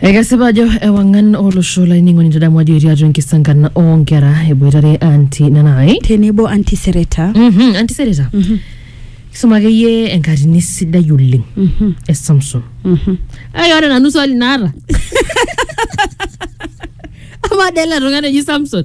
Ekesipa ajo ewang'an olosho laining'oni tadamu ajo etii atua enkisankan oonkera eboitare anti nanai tenebo anti sereta Mhm, anti sereta kisuma akeyie enkatini sidai oleng Mhm, e samson mhm. ai ore nanu swali naata amaa dele tung'ani oji samson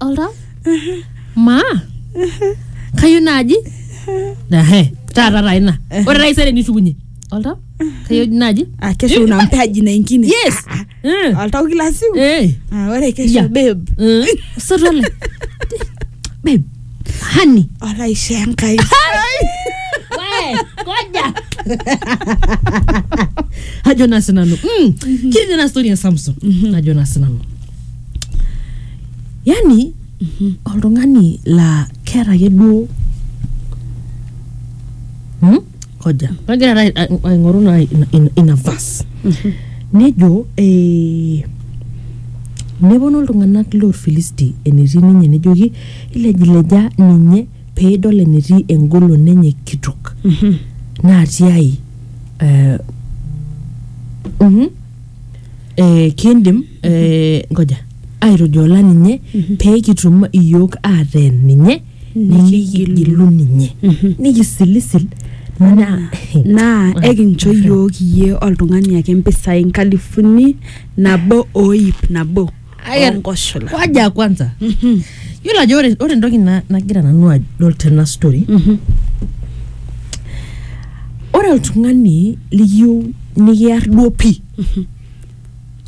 olta maa kayieu naaji Ehe, taata taa ina ore taisere nishukunye olta kayieu naaji Ah, kesho una mtaji na ingine yes Eh, oltau kila siku eh, Ah, ore kesho Yeah. babe eh, osotua le babe honey olaishe enkai Wee, koja ajo naa sinanu mm. kiri tena story ya samson ajo naa sinanu yani oltung'ani laa keeta ake duo hmm? koja kagira taata ai- aing'oru naa ina- ina- ina vas nejo eh, neponu iltung'anak lorfilisti enetii ninye nejoki ilejileja ninye pee idol enetii engolon enye kitok natii ai eh, mhm, eh, kindim eh, ngoja aitujoola ninye pee kitum iyiook aateen ninye nikigilu ninye nikisilisil naa naa ekincho iyiook iyie oltung'ani ake mpisai nkalifuni nabo o iip nabo Aya- onkoshola waja kwanza yiolo ajo ore ore entoki na- nagira nanu adol tena story ore oltung'ani likiyieu nikiar duo pii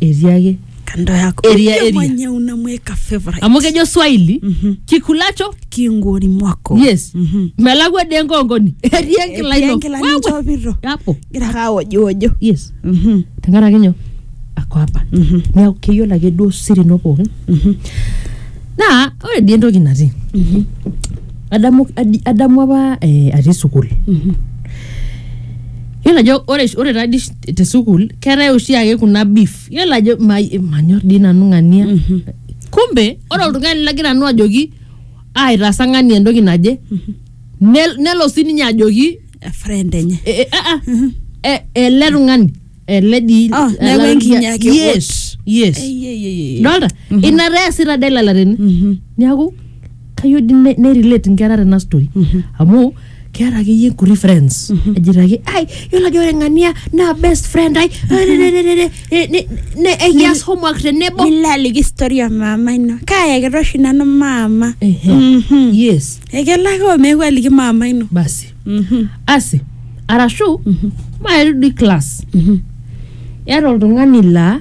etiaki kando yako Eria, Yule eria. mwenye unamweka favorite amu kejo swahili Mhm. kikulacho kingoni mwako yes Mhm. melakwa de enkongoni etii enkila Etii ino enkila Wewe. ninchopito. hapo gira ake awojiwojo yes Mhm, tenkaraki nyoo ako apa mhm, neeku keyiolo ake duo siri ino pookin mhm, naa ore dii entoki natii mhm, adamu adi- adamu apa eh, atii sukuul mhm. yiolo ajo ore ore taa dii te sukuul keetae oshiake kuna beef yiolo ajo ma- manyor dii nanu ng'ania Mhm. kumbe ore oltung'ani lagira nanu ajoki aitaasa ng'ania entoki naje nel- nelo sininye ajoki A friend enye e- e- ah, ah, e- ele tung'ani ele dii Ah, ele- neeku enkinyaki yes yes Ei, ei, ei, ei. dolta ina taa eesita dela larin Mhm. niaku kayieu di ne- nerelate nkera tena story amu keeta akeyie nkuti friends ejito ake ai yiolo ajo ore ng'ania naa best friend ai Ne- ne- ne- ekias homework tenebo nilo aliki story ya mama ino kaayakita oshi nanu mama Ehe. Mhm. yes ekelo ake omeeku aliki mama ino basi Mhm. asi arashu maeri di class Mhm. eeta oltung'ani laa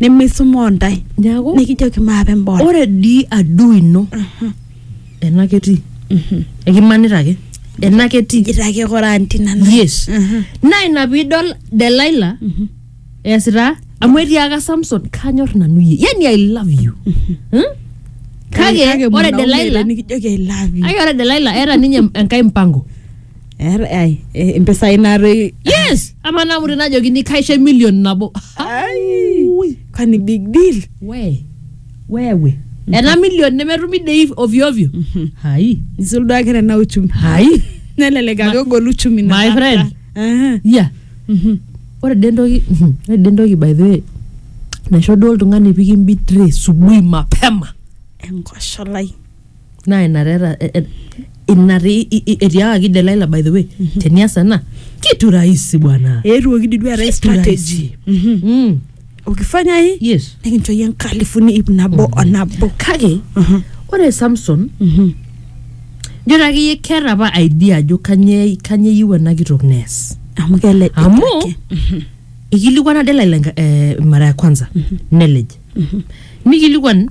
nemeisumoo ntae neaku nikijoki maape mbora ore dii adui ino ena ketii ekimanita ake ena ketii ijito ake kora anti nanu yes Mhm. naa ina piidol delaila eesita amu etiaka samson kanyor nanu yie yani i love you Hmm? kake ore mwanaume delaila nikijoki i love you ake ore delaila eeta ninye enkae mpango Eeta- ai, eh, impisai naatoi yes ama naa mure najokini kaisho emilion nabo Ai, Ui. kwani big deal we wewe ena milion nemetumi dei ovyo ovyo hai nisul duo ake tena uchumi hai nelelek ake egol uchumi na my kata. friend. Aha, ya mhm. ore de entoki ore de entoki by the way naisho duo oltung'ani pikimbitre subuhi mapema enkosholai naa ina taa eta- e- e- ina taa i- i- etiakaki Delilah by the way tenias ena kitu rahisi bwana eetuoki dii duo eetae Kitu strategy Mhm. mm. ukifanya hii yes nikincho yie nkalifuni ip nabo o nabo kake Mhm. ore samson Mhm. njo taakeyie keeta apa idea ajo kanye kanye eyieu ena kitok nees amu kelej amu ikilikuana Delilah enka- eh, mara ya kwanza nelej nikilikuan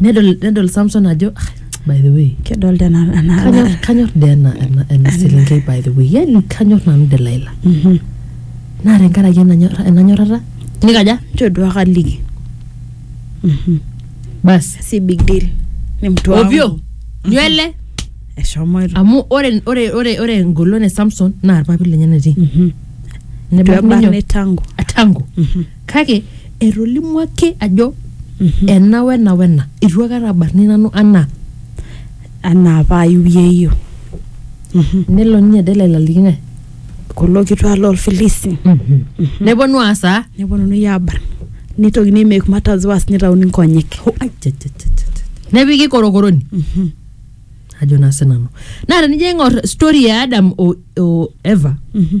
nedol nedol samson ajo "Ah, by the way kedolta ena ena- kanyor ena- kanyor dee ena ena- ena selenkei by the way yani kanyor nanu delaila Mhm. naa tenkaraki enanyor- enanyorrata nikaja nchoo duo ake aliki Mhm. basi si big deal ni mtu wangu. ovyo nywele eshomoito amu ore ore ore ore engolon e samson naa irpapit lenye netii Mhm. Nebaiki ninyo- Tuebarne tangu atango Mhm. Kake etolimuo ake ajo ena wena wena. Eitu aikata abarni nanu anaa. Anaa apa ayiu yeyio. Nelo ninye Delila aliki ng'ae? Kulo kituak loo Lfilisti. Neponu aas aa? Neponunui aabarn. Neitokini ai make matters worse neitauni nkonyek. Ho, ai, cha, cha, cha, cha, cha. Nepiki korokoroni. Ajo naa sinanu. Naa tenijo aing'or story e Adam o, o Eva Mhm.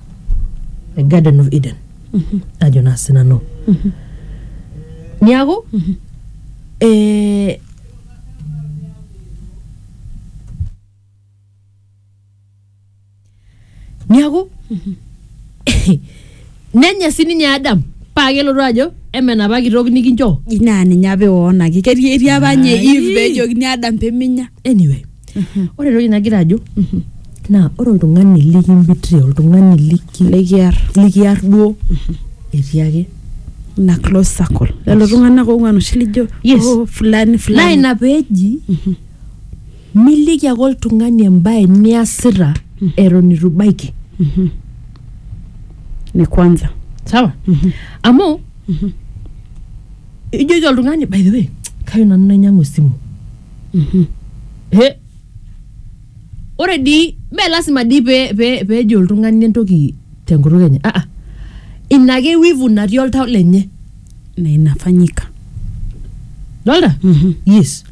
the garden of eden ajo naa sinanu niaku eh, niaku nenya sininye adam paa kelotu ajo eme enapa kitok nikinchoo naa ninye apa eoonaki ketii etii apa nye Ai. Eve pejokini Adam peminya anyway ore entoki nagira ajo naa ore oltung'ani likimbitria oltung'ani liki likiar likiar duo etii ake ina close circle lelo tung'anak oong'uan oshi lijo Yes. "Oh, fulani naa fulani ina peeji miliki ake oltung'ani embae niasita eton itu ibaiki ni kwanza sawa amu ijoki oltung'ani by the way kayieu nanu nainyiang'u esimu He. ore dii mee lasima dii pee pee peejo oltung'ani entoki tenkutuk enye ah, ah. ina ake wivu natii oltau lenye na inafanyika dolta yes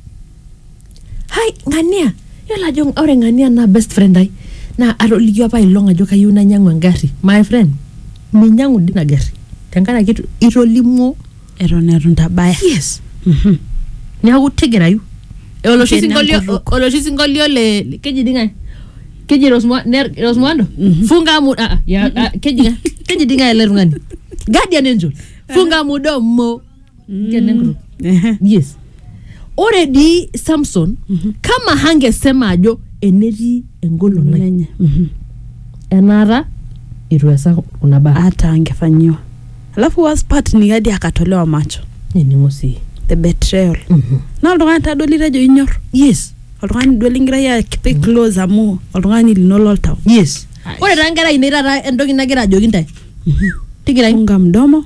hai ng'ania yiolo ajo ore ng'ania naa best friend ai naa atoliki apa ailong ajo kayieu nainyiang'u engarri my friend minyiang'u dii ina garri tenkaraki itu- itolimuo eton etu ntabaya yes neeku tigirayu Eh, oloshi Kena sinkolio enkutuk. oloshi sinkolio le le- keji di ng'ae keji Rosmo- ne- rosmoando funga mu ah, ah, ya- ah, keji ng'ae keji di ng'ae ele tung'ani guardian angel funga mudomo Kenengro. Ehe. yes ore dii samson kama hangesema ajo enetii engolon ai Lenye. Mhm. enaata itu easa kuna baa hata angefanyiwa alafu worst part ni hadi akatolewa macho nining'o sii the betrayal na oltung'ani tadoli tejo inyor yes oltung'ani duo lingira ya kipe close amu oltung'ani lino loltau yes ore taa nkera ainei taata entoki nagira ajoki ntae tigira funga mdomo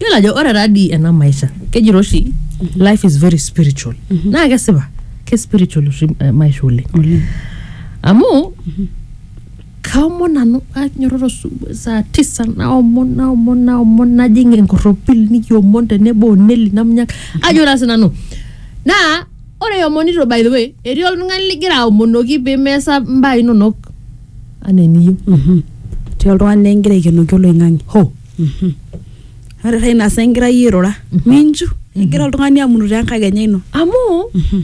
Yiolo ajo ore taa dii ena maisha kejito oshi life is very spiritual naa kesipa ke spiritual oshi eh, maisha oleng Oleng. amu kaomon nanu anyototo su- saa tisa naomon naomon naomon najing enkorropil nikiomon tenebo oneli namunyaka ajo naa sinanu naa Ore iomonito by the way, etii oltung'ani ligira aomonoki pee meesa mbaa inonok anaa eniyieu. Mhm. Etii oltung'ani likigira aikenoki oloing'ang'e. Hoo. Mhm. Ore taa ina saa igira iyie airura, minchu egira oltung'ani amunu te nkakenya ino. Amu Mhm.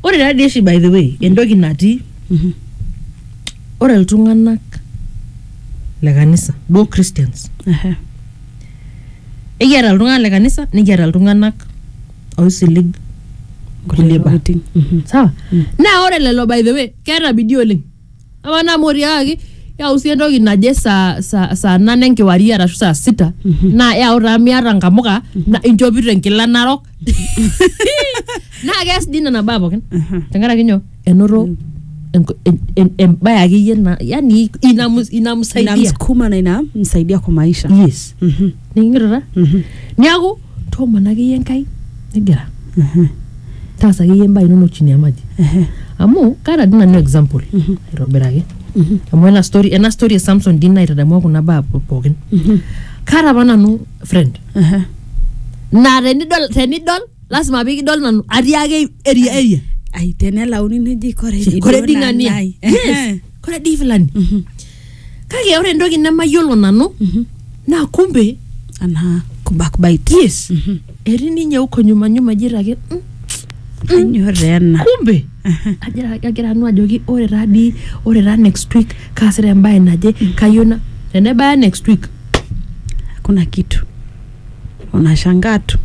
ore taa dii oshi by the way entoki natii Mhm. ore iltung'anak le kanisa duo Christians Ehe. ekiata iltung'anak le kanisa nikiata iltung'anak oisilig kulie baa tokitin. Mhm. sawa Mm. naa ore lelo by the way keeta bidii oleng ama naa amu otiakaki yau sii entoki naje saa saa saa nane enkewarie arashu saa sita Mhm. naa yau taa miata nkamuka na inchopito enkila narok naa keas dii nena baa pookin Aha. tenkaraki nyoo enoto enk- en- en- embae akeyie na yani inamus- inamsaidia inamsukuma na inamsaidia kwa maisha yes Mhm, nikingito ta mhm, niaku toomon akeyie enkai nigira mhm, taasa akeyie embae inonok chini ya maji ehe, amu kaata dii nanu example Mhm. aitobiraki mhm, amu ena story ena story e samson dii naitadamua kuna baa po- pookin mhm, kaata apa nanu friend ehe. naa tenidol tenidol lasima pikidol nanu atii ake eria eria ai tenelauni neji kore dii kore duo dii naa ng'ania nai. Yes, kore dii fulani Mhm, kake ore entoki nemayiolo nanu mhm. naa kumbe anaa kubakbait yes Mhm. etii ninye huko nyuma nyuma jito ake "Mm, kanyor taa ena kumbe Aha. Ajira- kagira nanu ajoki ore taa dii ore taa next week kaasita embae naje kayieu na tenebaya next week kuna kitu unashangaa tu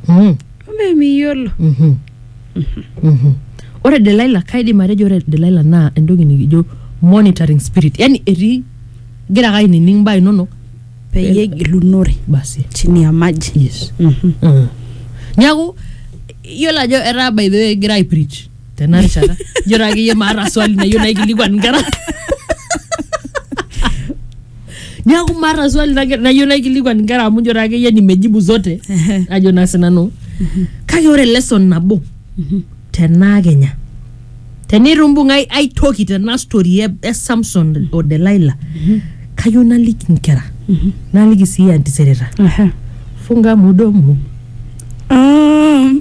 Mm. mme miyiolo Mhm. Mhm. ore delaila kaidim atejo ore delaila naa entoki nikijo monitoring spirit yani etii gira ake ainining mbaa inonok peyie egilunore basi chini ya maji yes Mhm. mm. niaku iyiolo ajo etaa by the way egira aiprich tena rishata ijo taa akeyie maata swali nayieu naikilikuan inkera niaku maata swali nage- nayieu naikilikuan inkera amu ijo taa akeyie nimejibu zote ajo naa sinanu kake ore lesson nabo tenaa kenya tenitu imbung ai, ai toki tena story e, e samson o delaila kayieu naliki inkera naliki sii antisereta Aha. funga mudomo Um,